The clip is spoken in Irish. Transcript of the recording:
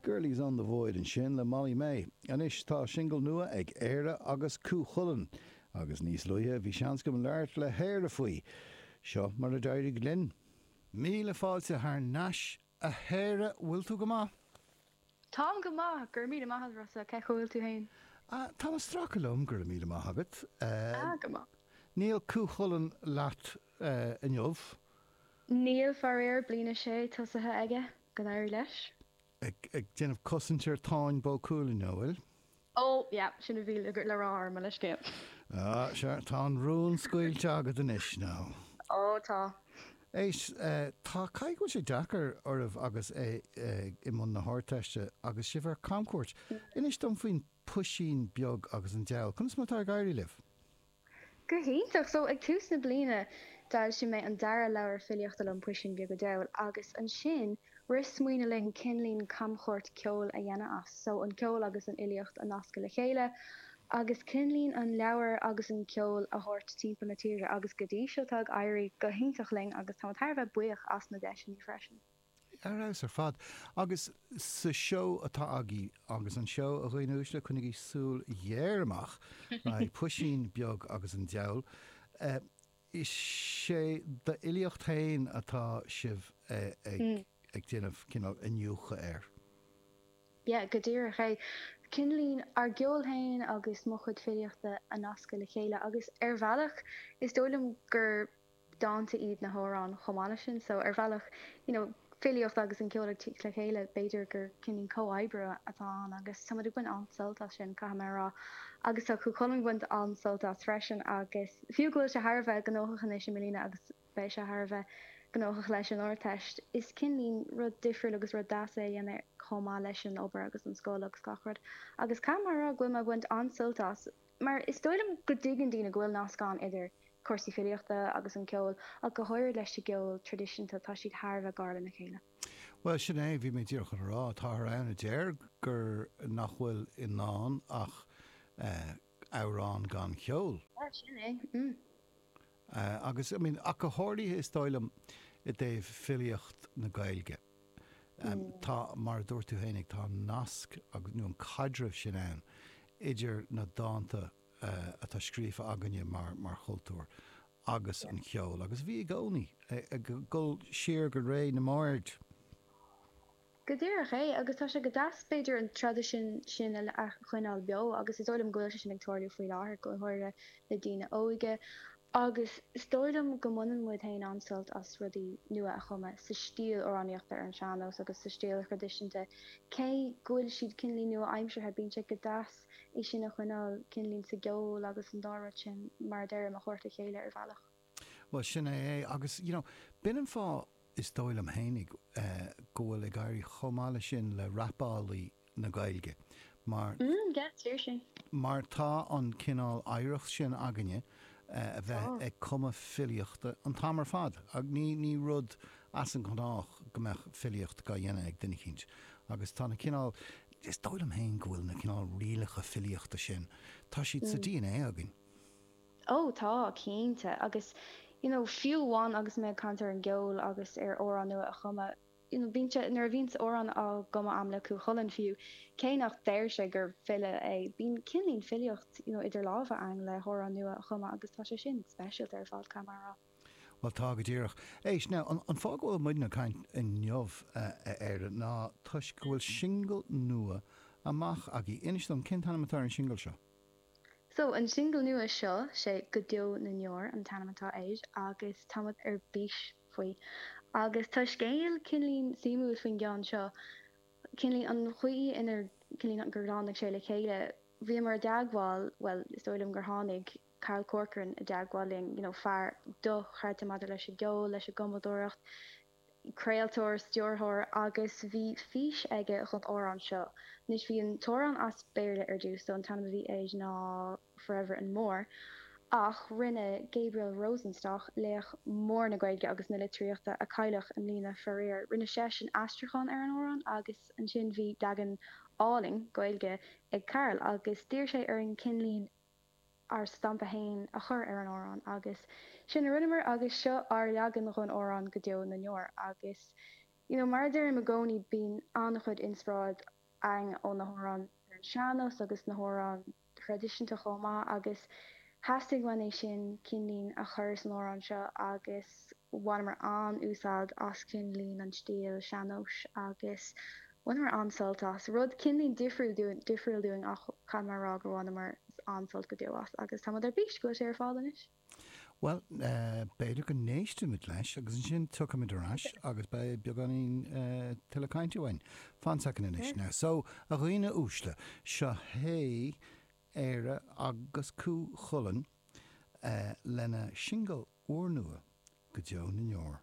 Girlie's on the Void ansin le Mollie Mae. Anois tá singil nua ag Éire agus Cú Chulainn agus níos luaithe bhí seans agam labhairt le hÉire faoi. Seo mar a d'éirigh linn. Míle fáilte thar n-ais a Éire, bhfuil tú go maith? Táim go maith, go raibh míle maith agat Rossa, cén chaoi a bhfuil tú féin? Ah, táim ag stracadh liom, go raibh míle maith agat. Ah, go maith. Níl Cú Chulainn leat inniu? Níl, faraor, bliain a sé tosaithe aige go n-éirí leis. ag déanamh cosaint ar Táin Bó Cuailnge, an bhfuil. Ó, yeah, sin a bhí le rá mar leithscéal. Ah, sea, tá an rún scaoilte agat anois, nó. Ó, tá. Éist, ah, caithfidh go bhfuil sé deacair oraibh agus é i mbun na hArdteiste agus sibh ar camchuairt. Inis dom faoin bpuisín beag agus an diabhal. Conas mar atá ag éirí libh? Go hiontach! So, ag tús na bliana, d'fhoilsigh mé an dara leabhar filíochta liom, Puisín Beag a' Diabhail, agus ansin, rith smaoineamh linn cineáilín camchuairt ceoil a dhéanamh as. So, an ceol agus an fhilíocht a nascadh le chéile, agus cineáilín an leabhar agus an ceol a thabhairt timpeall na tíre, agus go dtí seo tá ag éirí go hiontach linn agus táim thar a bheith buíoch as na deiseanna freisin. Ar fheabhas ar fad. Agus sa seó atá agaibh, agus an seó, a dhaoine uaisle, coinnigí súil ghéar amach le haghaidh Puisín Beag agus an Diabhal. Is é d'fhilíocht féin atá sibh ag déanamh cineál iniúchadh air. Yeah, go díreach é. Cineáilín, ár gceol féin agus mo chuid filíochta a nascadh le chéile. Agus ar bhealach, is dóigh liom gur. dánta iad na hamhráin chomh maith leis sin. So ar bhealach, you know, filíocht agus an ceol ag tíocht le chéile, b'fhéidir gur cineáilín comhoibriú atá ann agus tá muid ag baint an-sult as sin, caithfidh mé a rá. Agus tá Cú Chulainn ag baint an-sult as freisin agus fiú go bhfuil sé thar a bheith gnóthach anois i mbliana agus beidh sé thar a bheith gnóthach leis an Ardteist, is cineáilín rud difriúil agus rud deas é a dhéanamh chomh maith leis an obair agus an scoil agus gach rud. Agus caithfidh mé a rá go bhfuil mé ag baint an-sult as. mar is dóigh liom go dtuigeann daoine go bhfuil nasc ann idir cúrsaí filíochta agus an ceol, ach go háirid leis an gceol traidisiúnta, tá siad thar a bheith gar lena chéile. Bhuel, sin é, bhí mé díreach chun a rá, táthar ann a deir gur, nach bhfuil i ndán ach amhrán gan cheol. Bhuel, sin é. agus I mean ach go háirithe is dóigh liom i dtaobh filíocht na Gaeilge. Tá, mar a dúirt tú fhéinig, tá an nasc agus, nó an caidreamh sin ann idir na dánta atá scríofa againne mar, mar chultúr agus an cheol agus bhí i gcónaí ag dul siar go ré na mbard. Go díreach é, agus tá sé go deas, b'fhéidir, an traidisiún sin a choinneáil beo, agus is dóigh liom go bhfuil sé sin ag tarlú faoi láthair, go háirithe le daoine óige, agus is dóigh liom go mbaineann muid féin an-sult as rudaí nua a chumadh sa stíl amhránaíochta ar an sean-nós agus sa stíl thraidisiúnta, cé go bhfuil siad cineáilín nua-aimseartha, bíonn sé go deas é sin a choinneáil cineáilín sa gceol agus an dá rud sin, mar a deirim, a thabhairt le chéile ar bhealach. Bhuel, sin é é. Agus, you know, b'in an fáth, is dóigh liom fhéinig, go bhfuil ag éirí chomh maith leis sin le rapálaí na Gaeilge, mar, mar tá an cineál oidhreacht sin againne a bheith ag cumadh filíochta an t-am ar fad. Ní, ní rud as an ngnách go mbeadh filíocht dhá dhéanamh ag duine eicínt. Agus tá na cineál, is dóigh liom féin go bhfuil na cineál rialacha filíochta sin, tá siad sa DNA againn. Ó, tá, cinnte. Agus, you know, fiú amháin agus mé ag caint ar an gceol agus ar amhráin nua a chumadh, you know, bíonn sé, nuair a bhíonns amhráin á gcumadh a'm le Cú Chulainn fiú, cé nach deir sé gur file é, bíonn cineáilín filíocht, you know, idir lámha againn le hamhrán nua a chumadh agus tá sé sin speisialta ar fad, caithfidh mé a rá. Bhuel, tá go díreach. Éist, now, an, an fáth go bhfuil muidne ag caint inniu, a Éire, ná toisc go bhfuil singil nua amach agaibh. Inis dom, cén t-ainm atá ar an singil seo? So, an singil nua seo, sé Go Deo na nDeor an t-ainm atá air agus táimid ar bís faoi. Agus tá scéal cineáilín suimiúil faoin gceann seo, cineáilín, an chaoi inar, cineáilín, gur tháinig sé le chéile. Bhíomar i dteagmháil, bhuel, is dóigh liom gur tháinig Carl Corcoran i dteagmháil linn, you know, fear dochreidte maidir leis an gceol, leis an gcumadóireacht, craoltóir, stiúrthóir agus bhí fís aige dhon amhrán seo. Anois bhí an t-amhrán as Béarla ar dtús, so an t-ainm a bhí air ná Forever and More ach rinne Gabriel Rosenstock, laoch mór na Gaeilge agus na litríochta a cailleadh i mbliana faraor, rinne seisean aistriúchán ar an amhrán agus ansin bhí leagan álainn Gaeilge ag Carl agus d'iarr sé orainn cineáilín a ár stampa féin a chur ar an amhrán agus sin a rinneamar agus seo ár leagan dhon amhrán Go Deo na nDeor agus you know mar a deirim i gcónaí bíonn an-chuid inspráid againn ó na hamhráin ar an sean-nós agus na hamhráin thraidisiúnta chomh maith agus theastaigh uainn é sin cineáilín a chur san amhrán seo agus bhaineamar an-úsáid as cineáilín an stíl sean-nóis agus Bhaineamar an-sult as, rud cineáilín difriúil dúinn ach caithfidh mé a rá gur bhaineamar an-sult go deo as agus táimid ar bís go bhfuil sé ar fáil anois. Bhuel, b'fhéidir go n-éistimid leis agus ansin tiocfaimid ar ais agus beidh beagáinín tuilleadh cainte againn. Fan soicind anois now. So, a dhaoine uaisle, seo hé Éire agus Cú Chulainn lena singil úrnua, Go Deo na nDeor.